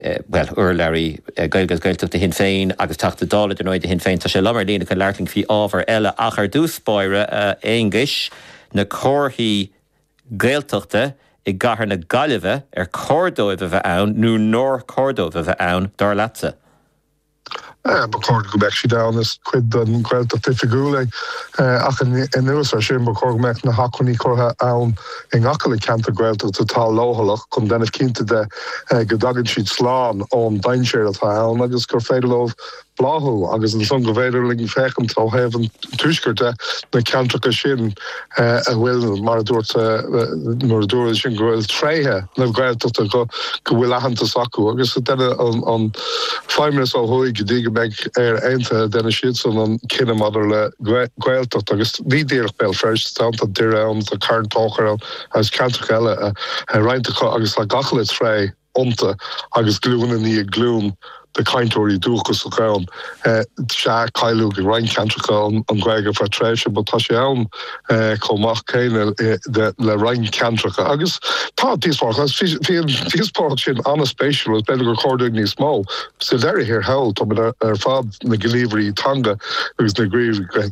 bhuel, urlabhraí Gaeilge is Gaeltachta Shinn Féin agus Teachta Dála, ar ndóigh, do Shinn Féin. Tá sé liom ar líne chun labhairt linn faoi ábhar eile ach ar dtús báire, a Aonghuis, na comharthaí Gaeltachta i gcathair na Gaillimhe, ar chóir dóibh a bheith ann nó nár chóir dóibh a bheith ann, dar leatsa? Ba chóir go mbeadh siad ann, is cuid den Ghaeltacht Oifigiúil é. Ach anuas ar sin, ba chóir go mbeadh na hacmhainní curtha ann i ngach uile ceantar Gaeltachta atá leochaileach chun déanamh cinnte de go dtagann siad slán ón dainséar atá ann agus gur féidir leo bláthú agus ansan go bhféidir linn féachaint ó thaobh an tuaiscirt de na ceantracha sin. a bhfuil, mar a dúirt, mar a dúradh ansin go bhfuil tréithe na Gaeltachta go go bhfuil aitheantas acu agus deineadh an Feidhmeannas ó thuaidh go dtí go mbeidh Éire Aontaithe deineadh siadsan an cinneadh maidir le Gaeltacht agus ní díreach Béal Feirste amháin, tá Doire ann, tá Carn Tóchair ann agus ceantracha eile, roinnt acu agus tá gach uile tréith iontu agus glúin i ndiaidh glúin de chainteoirí dúchasacha ann. Sea, cailleadh i roinnt ceantracha an Ghaeilge ar feadh tréimhse but tá sé ann chomh maith céanna le roinnt ceantracha agus tá díospóireacht agus bhí an díospóireacht sin an-spéisiúil agus b'fhéidir gur chóir dúinn níos mó. Sa deireadh thiar thall táimid ar fad, na gníomhairí teanga agus na gníomhairí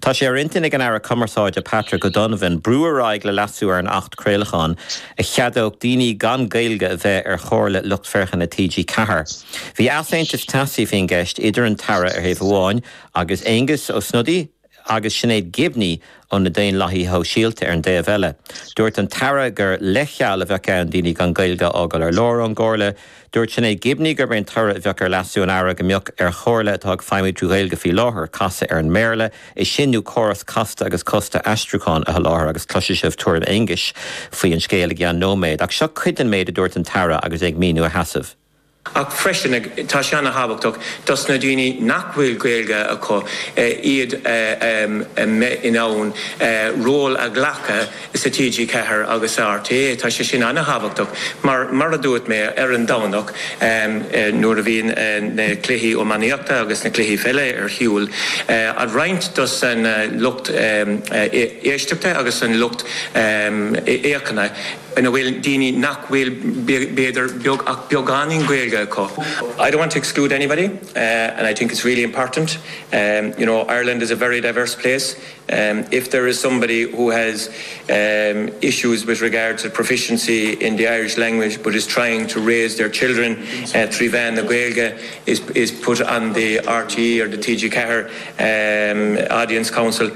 Tá sé ar intinn ag an Aire Cumarsáide Patrick O'Donovan brú ar aghaidh le leasú ar an Acht Craolacháin a cheadódh daoine gan Gaeilge a bheith ar Chomhairle Lucht Féachana TG Ceathair. Bhí easaontas teasaí faoin gceist idir an tAire ar thaobh amháin agus Aengus Ó Snodaigh agus Sinéad Gibney ó na Daonlathaithe Shóisialta ar an dtaobh eile. Dúirt an tAire gur leithcheal a bheadh ann daoine gan Gaeilge a fhágáil ar lár ón gComhairle Dúirt Sinéad Gibney gurb é an toradh a bheadh ar leasú an Aire go mbeadh ar chomhairle atá ag feidhmiú trí Ghaeilge faoi láthair casadh ar an mBéarla é sin nó córas casta agus costasach aistriúcháin a sholáthar agus cloisfidh sibh tuairim Aonghuis faoi an scéal i gceann nóiméad ach seo cuid den méid a dúirt an tAire agus é ag míniú a sheasaimh. Ach freisin, tá sé an-thábhachtach dos na daoine nach bhfuil Gaeilge acu iad a bheith in ann ról a ghlacadh sa TG4 agus sa RTÉ. Tá sé sin an-tábhachtach mar, mar a dúirt mé ar an Domhnach nuair a bhíonn na cluichí iománaíochta agus na cluichí pheile ar shiúl, an roinnt dos an lucht éisteachta agus an lucht fhéachana ina bhfuil daoine nach bhfuil b'fhéidir beag ach beagáinín Gaeilge acu. I don't want to exclude anybody and I think it's really important, you know Ireland is a very diverse place. if there is somebody who has issues with regards to proficiency in the Irish language but is trying to raise their children trí mheán na Gaeilge is is put on the RTE or the TG4 audience council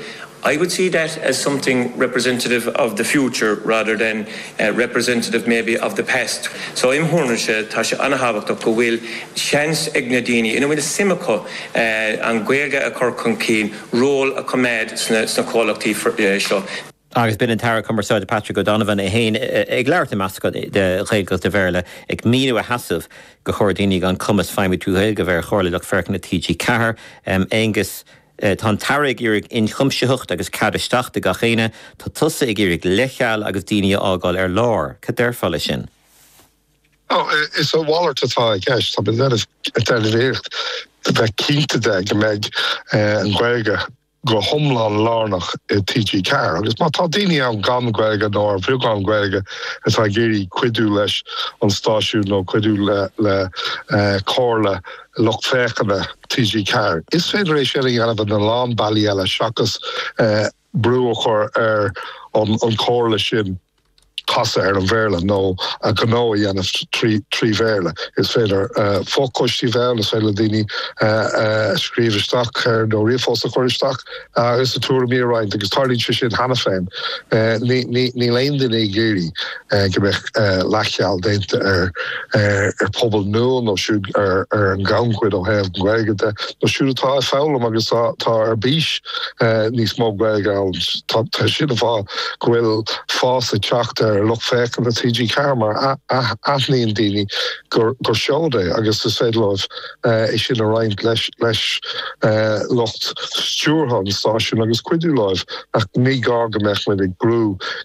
I would see that as something representative of the future rather than representative maybe of the past. So im' thuairimse tá sé an-tábhachtach go bhfuil seans ag na daoine ina bhfuil suim acu an Ghaeilge a chur chun cinn, ról a choimeád sna comhlachtaí seo. Agus b'in an tAire Cumarsáide Patrick O'Donovan é féin ag labhairt i meascán de Ghaeilge agus de Bhéarla ag míniú a sheasaimh gur chóir daoine gan cumas feidhmiú trí Ghaeilge a bheith ar Chomhairle Lucht Féachana TG4. Aengus Tá an tAire ag iarraidh inchuimsitheacht agus cead isteach do gach éinne. Tá tusa ag iarraidh leithcheal agus daoine a fhágáil ar lár. Cad déarfá leis sin? Is a mhalairt atá i gceist. Tá muid ag déanamh iarracht a bheith cinnte de go mbeidh an Ghaeilge go hiomlán lárnach i TG4 agus má tá daoine ann gan Gaeilge nó ar bheagán Gaeilge atá ag iarraidh cuidiú leis an stáisiún nó cuidiú le comhairle lucht féachana TG4, is féidir é sin a dhéanamh ina lán bealaí eile seachas brú a chur ar an chomhairle sin casadh ar an Bhéarla nó a ngnó a dhéanamh trí Bhéarla. Is féidir fo-choistí a bheith ann, is féidir le daoine scríobh isteach nó ríomhphost a chur isteach agus a dtuairimí a roinnt agus tarlaíonn sé sin cheana féin. Níl aon duine ag iarraidh. go mbeadh leathcheal déanta ar phobal nua nó siúd ar an ghannchuid ó thaobh na Gaeilge de nó siúd atá ag foghlaim agus atá ar bís níos mó Gaeilge a fhoghlaim. Tá siad ag rá go bhfuil fás ag teacht ar lucht féachana TG4 mar aithníonn daoine gur seod é agus is féidir leo é sin a roinnt leis lucht stiúrtha an stáisiúin agus cuidiú leo ach ní gá go mbeadh muid ag brú